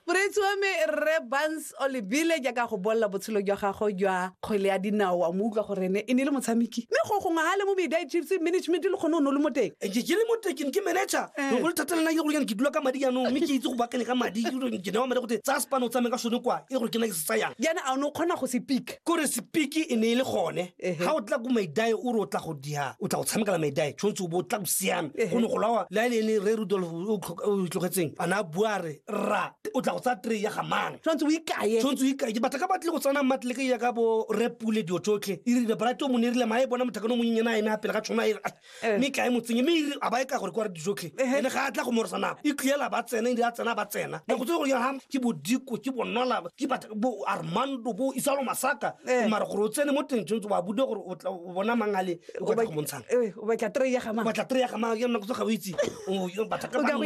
moreetsi wa me rre bans olebile jaaka go bolela botshelo jwa gago jwa kgwele ya dinao wa mo utlwa gore ene e ne le motshameki mme go gongwe ga le mo media chiefs management le kgone o ne o le mo teng eh, ke le mo tekeng ke manager eh. go le thata lena ke gore ke dula ka madi jaanong mme ke itse go bakane ka madi ke newa madi gote tsaya sepano o tsame ka sone kwa e gore ke na ke se tsayang jaana a o ne o kgona go sepik kore sepik e ne e le gone ga o tla ko maidae o re o tla go dia o tla go tshamekela maidae tshwanetse o bo o tla go siame go ne go lawa le a le ene re rudolf o itlogetseng a ne a bua re rra o tla go tsaya tray ya gamana tshwanetse o ikaye tshwanetse o ikaye ke batla ka batle go tsana matleleke ya ka bo repule dio tsotlhe e rile brate o mo ne e rile maye bona mothakano o monyenyana a ene a pele ga tshwana eh. mme kae motseng mme e a ba e ka gore kwa re dijotlhe eh, ene ga a tla go moresa nako e tliela ba tsena e di a tsena ba tsena nako tse gore ga ke bodiko ke bonola ke bo armando bo isalo masaka mara gore o tsene mo teng tshwanetse ba bude gore o bona mang a le o ka go montshang o batla tre ya ga mang o batla tre ya ga mang ke nako tse ga o itse o batla ka mang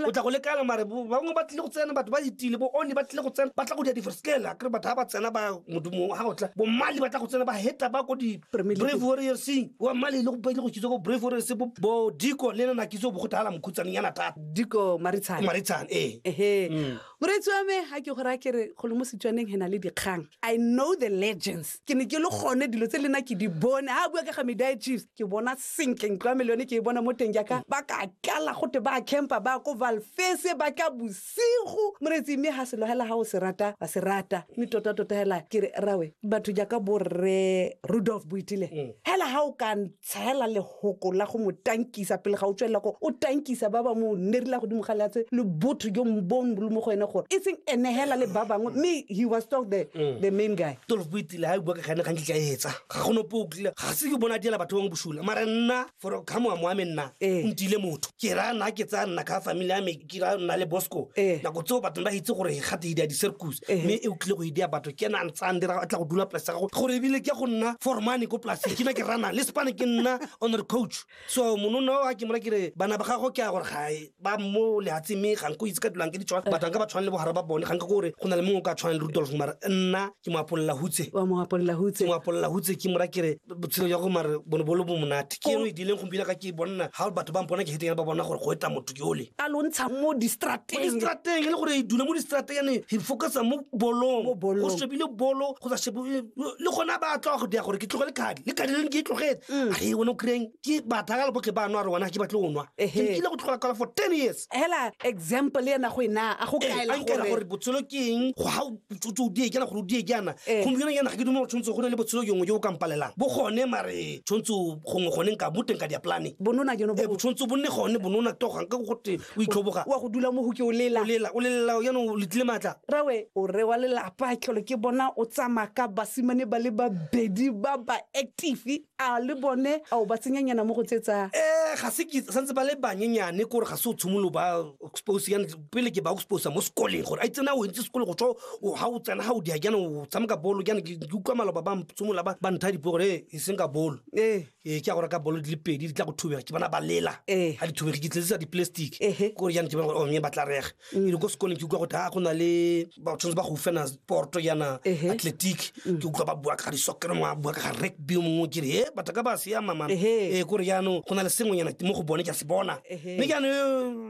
o tla go lekala mare ba bangwe ba tlile go tsena batho ba itile bo oni ba tlile go tsena ba tla go dia di friskel akere batho ba ba tsena ba modumo ga o tla bo mali ba tla go tsena ba heta ba ko di brave warriors wa male le gope le go kitso ko brave warriors bo bo diko le nana kitso bo go thala mokhutsane yana thata diko maritshane maritshane ee ehe mm. moreetsi wa me ga ke go raya kere golo mo setswaneng he na le dikgang i know the legends ke ne ke le gone dilo tse lena ke di bone ga bua ka ga media chiefs ke bona sentle ntlo ya me le yone ke e bona mo teng jaaka ba ka tlala gote ba campa ba ko valfese ba ka Sego, Moretsi, mme ga selo hela ga o se rata, wa se rata. Mme tota-tota hela ke re, Rawe, batho jaaka bo Rre Rudolf Boitile, hela ga o ka ntsha hela lehoko la go mo tankisa pele ga o tswelela ko o tankisa ba ba mo nerila godimo ga leatshe le botho jo bo lo mo go ene gore e seng ene hela le ba bangwe mme he was still the, the main guy. Tolofo Boitile ha e bua ka gane gantsi tla e etsa. Ga go nope o kile. Ga se ke bona diela batho bangwe bosula. Mara nna for ka moamo wa me nna Ee. ntile motho. Ke ra nna ke tsaya nna ka family ya me. kira nna le bosco eh. nako tseo batho ba itse gore gate idea di-circus eh. mme e o tlile go idea batho ke ena a ntse a ndira a tla go dula polase gago gore ebile ke go nna formane ko polase ke na ke rana le spane ke nna honor coach so monona a ke mora kere bana ba gago ke a gore gae ba mo lehatseng mme ga nko itse ka dulang ke ditshwana batho ga ba tshwane le bohara ba bone ga nka gore go na le mongwe o ka tshwane le rudolf mara nna ke mo apolela hutse wa mo apolela hutse mo apolela hutse ke mora kere botshelo jwa go mare bone bolo bo monate ke eno e dileng gompiena ka ke bonna ga batho ba mpona ke heteng ba bona gore go eta motho ke ole a lo ntsha mo distrateng mo distrateng e le gore e dula mo distrateng ene he focusa mo bolong go shebile bolo go sa shebe le gona ba tloga go dia gore ke tlogele kadi le kadi leng ke e tlogetse mm. a e one o kry-eng ke batha ka leboke ba nwa re wana ke batle o nwa ke nkile go tlhola kala for ten years hela example ena go ena a go kaela gore botshelo ke eng go ga utsotse o die kana gore o die kana gompieno yana ga ke dumela tshwanetse go ne le botshelo yongwe jo o kampalelang bo gone mare tshwanetse gongwe gone nka bo teng ka diaplane bonona ke no bo tshwanetse bonne gone bonona togang ka go gote o itlhoboga wa go dula mo go ke o lela o lela o lela yana o letlile matla rawe o re wa lelapa tlholo ke bona o tsamaka basimane ba le babedi ba ba active a le bone ao ba tsenyanyana mo go tse tsa um ga se ke santse ba le banyenyane kore ga se o tshimolo ba expose yana pele ke ba exposa mo sekoleng gore a itse na o entse sekole go tswa ga o tsena ga o dia jana o tshameka bolo jana ke utlwa maloba ba tshimola ba ntha dipo gore e seng ka bolo ee ke ya gore ka bolo di le pedi di tla go thubega ke bona ba lela ga di thubege ke tlelisa di-plastic kore jana ke bona gore o mme ba tla rega mm. e ko sekoleng ke utlwa gote a ah, go na le ba tshwanetse ba go fena porto yana athletic mm. ke utlwa ba bua ka ga disokere mongwe a bua ka ga rugby mongwe ke re e batho ka ba siama mana ee eh, kore jaanong go na le sengwenyana mo go bone ke a se bona mme ke ane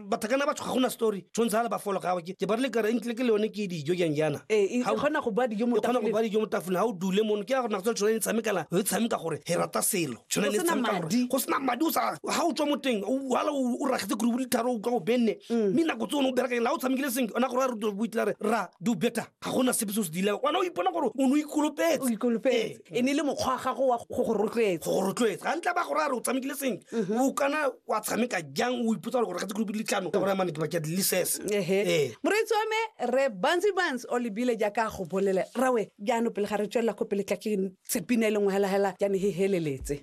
batho kana ba tshoga go na story tshwanetse ga le ba folo gago ke ba re le kare entle ke le yone ke dijo jang jana e kgona go ba dijo mo tafoleng ga o dule mono ke ya gore nako tsa le tshwaneng tshamekala re tshameka gore re rata selo Tshwana Go le sena tshameka gore- madi. go sena madi o sa ga o tswa mo teng o- wala o o ragetse kore boditharo o utlwa o benne Mm. mme nako tse one o berekeng la o tshamekile senke ona gore a ruto boitla re ra do better ga gona sepe se o se dileng ona o ipona gore o ne o o ikolopetse ikolopetse e ne le mokgwa wa gago wa go go rotloetsa go go rotloetsa ga ntla ba gore a re o tshamekile senke Mhm. o kana wa tshameka jang o ipotsa gore gore ga tse kolobi ditlhano ka gore mane ke bakea dilises ehe moreetsi wa me re bansi bans o lebile jaaka go bolele rawe Jaanong pele ga re tswelela ko pele tla ke tse pina e leng hela hela jaanong he heleletse.